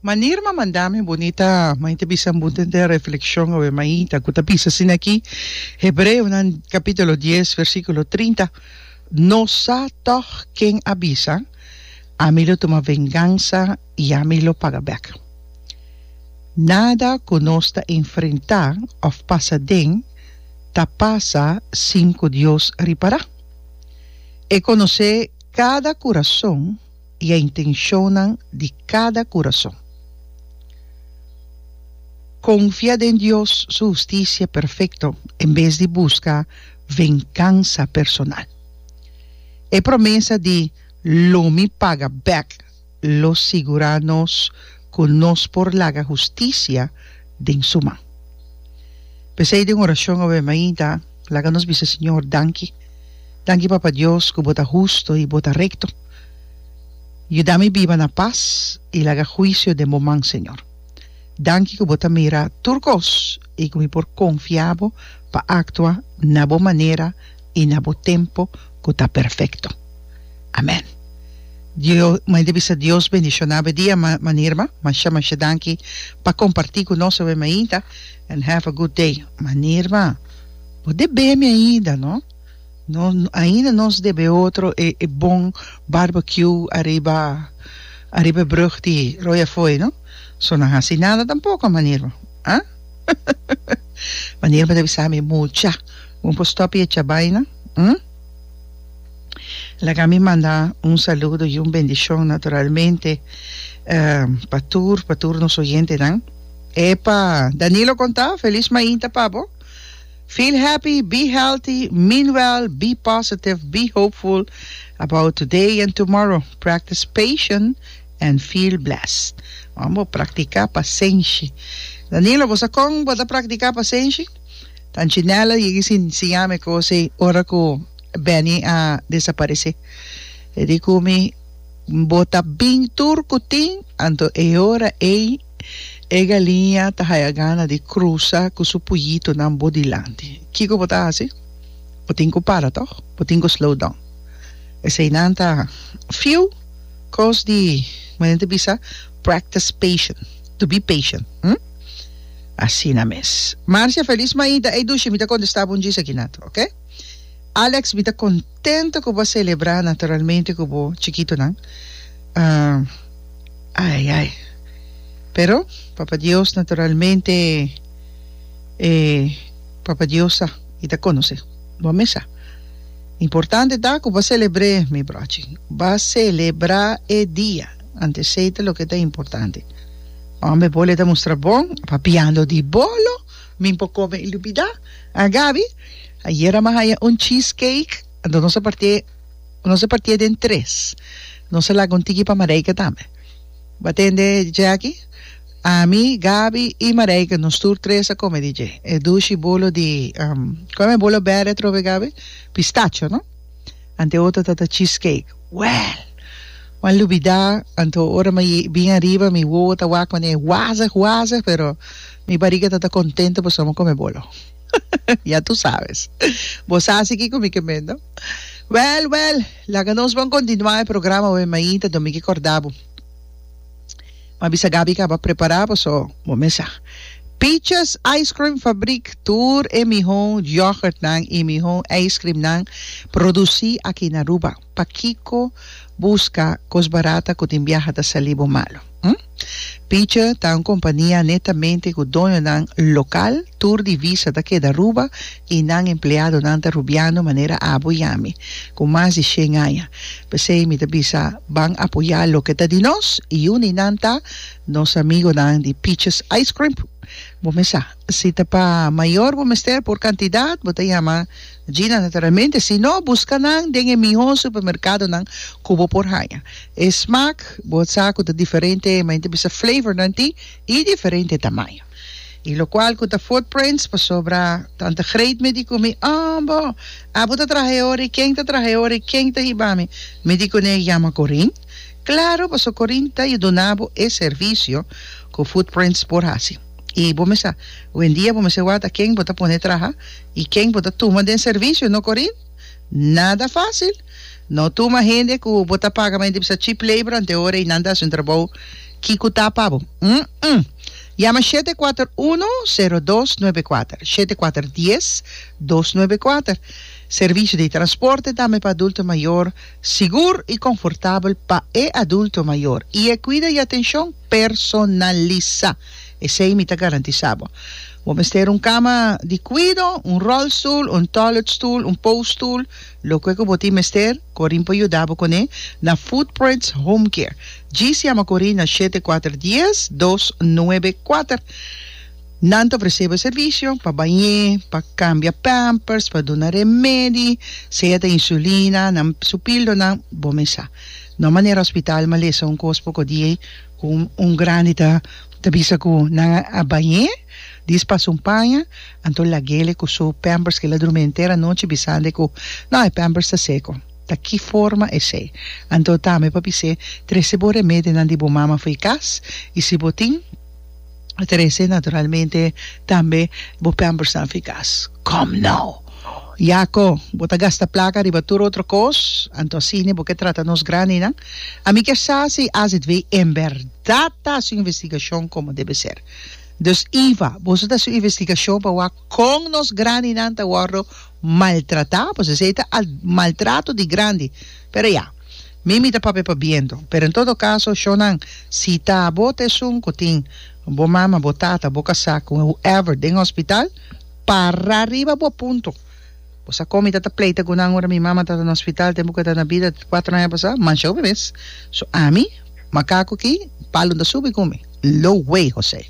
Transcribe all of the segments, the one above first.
Manera ma manda mi bunita, mai ta bisa bo den den reflexion awe maita ku ta bisa asina aki, Hebreonan capítulo dies versículo trinta, No sa tòg ken a bisa, Ami lo tuma vengansa i ami lo paga bèk. Nada ku nos ta enfrentá òf pasa den ta pasa sin ku Dios ripará. E konosé Kada kurason i e intenshonnan di kada kurason. Konfia den Dios su hustisia perfekto en bes di buska venkansa personal. E promesa di Lo mi paga bèk! lo sigurá nos ku nos por laga hustisia den su man. P'esei den orashon awe mainta, laga nos bisa Señor danki. Danki Papa Dios ku bo ta husto i bo ta rekto. Yuda mi biba na pas i laga huisio den bo man, Señor. Danki ku bo ta mira tur kos i ku mi por konfia bo pa aktua na bo manera, i na bo tempu ku ta perfekto. Amèn. Dio, mei ta bisa Dios bendishoná bo e dia ma mani erma. Masha masha danki pa kompartí ku nos awe mainta and have a good day. Mani erma bo debé mi ainda no, no ainda nos debé otro e e bon barbecue ariba ariba e brug di Royafooi no, so nan hasi nada tampoko mani erma ah mani erma ta bisa mi mucha. Bo por stop e chabaina, hm? Laga mi manda un saludo y un bendicion naturalmente pa tur, pa tur nos oyentenan. Epa, Danilo conta, feliz mainta pa bo. Feel happy, be healthy, mean well, be positive, be hopeful about today and tomorrow. Practice patient and feel blessed. Wan bo practica pasenshi. Danilo, bosa con bo ta practica pasenshi? Punchinella yeg'i sin siñami cos ey ora cu Benny a desaparece. E di cu mi bota bin tur cu tin, anto e ora ey e galiña ta haya gana di crusa cu su puyitonan bo dilanti. Kico bo ta haci? Bo tin cu para toch? Bo tin cu slow down? Eseinan ta few cos di, como nan ta bisa, practice patient, to be patient. Asina mes. Marcia, Felis maida ei dushi mi ta kontesta bo un djis aki natu, ok? Alex, Mi ta kontento ku bo a selebrá naturalmente ku bo chikitunan. Ai ai. Pero Papa Dios naturalmente e Papa Dios sa i ta konosé bo mesa. Importante ta ku bo a selebr'é mi brochi. Bo a selebrá e dia, antes esei ta loke ta importante. Hombe bolo e ta mustra bon papiando di bolo mi por come y lubida ah Gaby ayer a mi a haya un cheese cake enton nos a partié nos a partié den tres nos a laga un tiki pa Marijke tambe bo a tende Jackie ami Gaby y Marijke nos tur tres a come di dje e dushi bolo di um como e bolo bere atrobe Gaby pistacho no. Anto otro ta ta cheesecake. Wèl! Wan lubidá, anto ora mi bin ariba mi wowo ta wak manera e wazig wazig, pero mi bariga ta ta kontento pasobra mi kome bolo. Ya tu sabes. Bo sa si kiko mi ke mendo? Wèl, wèl! Laga nos bon kontinuá e programa, oe mainta, dor mi ke kòrda bo. M'a bisa Gaby caba prepara paso bo mesa. Peaches Ice Cream Fabriek tur e miho yoghurt nan y miho ice cream nan produci aki na Aruba. Pakico busca cos barata cu tin biaha ta sali bo malo? Hm? Peache ta un compania netamente cu doño nan local, tur divisa ta keda Aruba. I nan empleadonan ta rubiando manera abo i ami ku mas di shen aña. P'esei mi ta bisa, Ban apoyá loke ta di nos, i un di nan ta nos amigonan di Peaches Ice Crimp. Bo mes sa, si ta pa mayor bo mester por kantidat, bo ta yama Gina naturalmente, si no buska nan den e mihó supermerkadonan ku bo por haña. E smak bo sa ku ta diferente, manera mi ta bisa flavornan tin i diferente tamaño. Y locual cu ta footprints pasobra tanta great me di cu mi oh bo abo ta traha e ora y ken ta traha e ora y ken ta hiba mi mi di cu ne yama Corine claro pasobra Corine ta y duna bo e servicio cu footprints por haci y bo mesa wendia bo mesa wata ken bo ta pone traha y ken bo ta tuma den servicio no Corine nada facil. No tuma hende ku bo ta paga mente bisa cheap labor anteora i nan ta hasi un trabou ki ku ta pa bo. Umm. Yama shete kuater uno sero dos nuebe kuater, shete kuater dies dos nuebe kuater, Servisio di transporte tambe pa adulto mayor sigur i konfortabel pa e adulto mayor i e kuida i atenshon personalisá. Esei mi ta garantisá bo. Bo mester un kama di kuido, un rolstoel, un toiletstoel, un pousstoel, Loke ku bo tin mester, Corin por yuda bo kuné na Footprints Home Care. Djis yama Corin na shete kuater dies dos nuebe kuater. Nan ta ofresé bo e servisio pa bañ'é, pa kambia pampers, pa duna remedi, sea ta insulina, nan su píldonan, bo mes sa. No manera hospital malesa un kos poko di ei ku un un grandi ta ta bisa ku nan a bañ'é, di es pas un paña. Anto lagele cu su pampers kila drumi henter anochi bisande cu, No, e pampers ta seco. Ta ki forma esey? Anto tambe pa bis'é, Trece bo remedionan di bo mama fo'i cas y si bo tin trece, naturalmente tambe bo pampersnan fo'i cas. Come no! Yaco, bo ta gasta placa riba tur otro cos, anto asine bo ke trata nos grandinan? Ami kier sa si AZV en berdad ta haci un investigacion como debe ser. Dus Eva, boso ta su investigashon pa wak kon nos grandinan ta wòrdu maltratá, pasobra esei ta al maltrato di grandi. Pero ya, mi mi ta papia pa bientu. Pero en todo kaso, shonnan, si ta bo ta esun ku tin bo mama, bo tata, bo kasá, ku whoever den hospital, para riba bo punto. Bo sa con mi tata pleita cu nan ora mi mama tata na hospital tempo cu e ta na bida di cuatro aña pasa manshao mi mes so ami macaco aki palun ta subi cu mi lo way Jose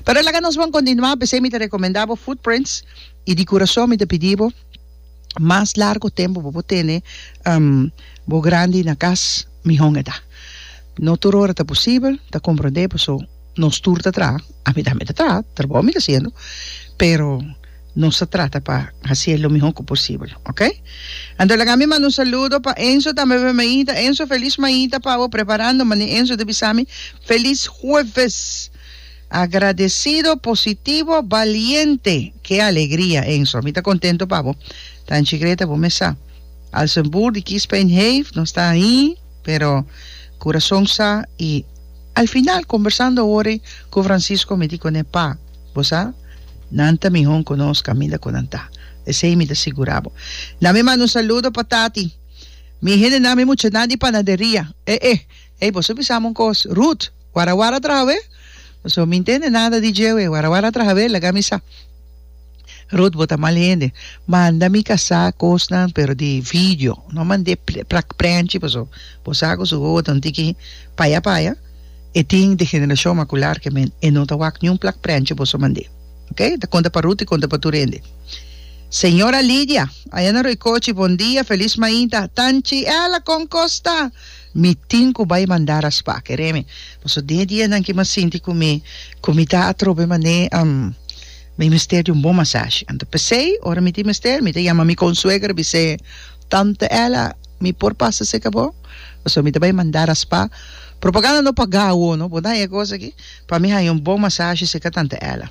pero laga nos bon continua p'esey mi ta recomenda bo footprints y di curason mi ta pidi bo mas largo tempo bo por tene bo grandi na cas mi hon eta no tur ora ta posibel ta comprende paso nos tur ta traha ami tambe ta traha trabou mi ta haciendo pero. Nos ta trata pa hasié lo mihó cu posibel, ok? Anto laga mi manda un saludo pa Enzo tambe pa mi maita. Enzo, feliz maita pa bo preparando mane Enzo ta bisa mi, feliz hueves! Agradecido, positivo, valiente. Ke alegria Enzo, mi ta contento pa bo. Tanchi Greta bo mes sa al zijn boer di kies pijn heeft, nos ta ahi pero curason sa y al final conversando awor cu Francisco mi di cone, Pa, Bo sa, nan ta mihó ku nos kaminda ku nan ta. Esei mi ta sigurá bo. Na mi manda un saludo pa tati. Mi hendenan, mi muchanan di panaderia. Eh, eh. Ey, boso bisa mi un kos. Ruth, wara wara traha wé? Boso mi ntende nada di dje wé. Wara wara traha wé, laga mi sa. Ruth, bo ta mal hende. Manda mi kasá kosnan, pero di video. No mand'é prak prenchi, paso bo sa ku su wowo ta un tiki paya paya. E tin di generacion macular ke men e no ta wak niun plak prenchi boso mand'é. Ok? Ta conta pa Ruth y conta pa tur hende. Señora Lidia, aya na Roycochi, bon dia, feliz mainta. Tanchi Ella, con cos ta? Mi tin cu bay manda raspa, kere mi. Paso den e dianan ki mi a sinti cu mi, cu mi ta atrobe mané, am, mi mester di un bon masashi. Anto pesey, ora mi tin mester, mi ta yama mi consuegra bis'é, Tante Ella, mi por pasa seca bo? Pasobra mi ta bay manda raspa. Propaganda no paga awo no, bo ta haña e cosa aki? Pa mi haña un bon masashi seca Tante Ella.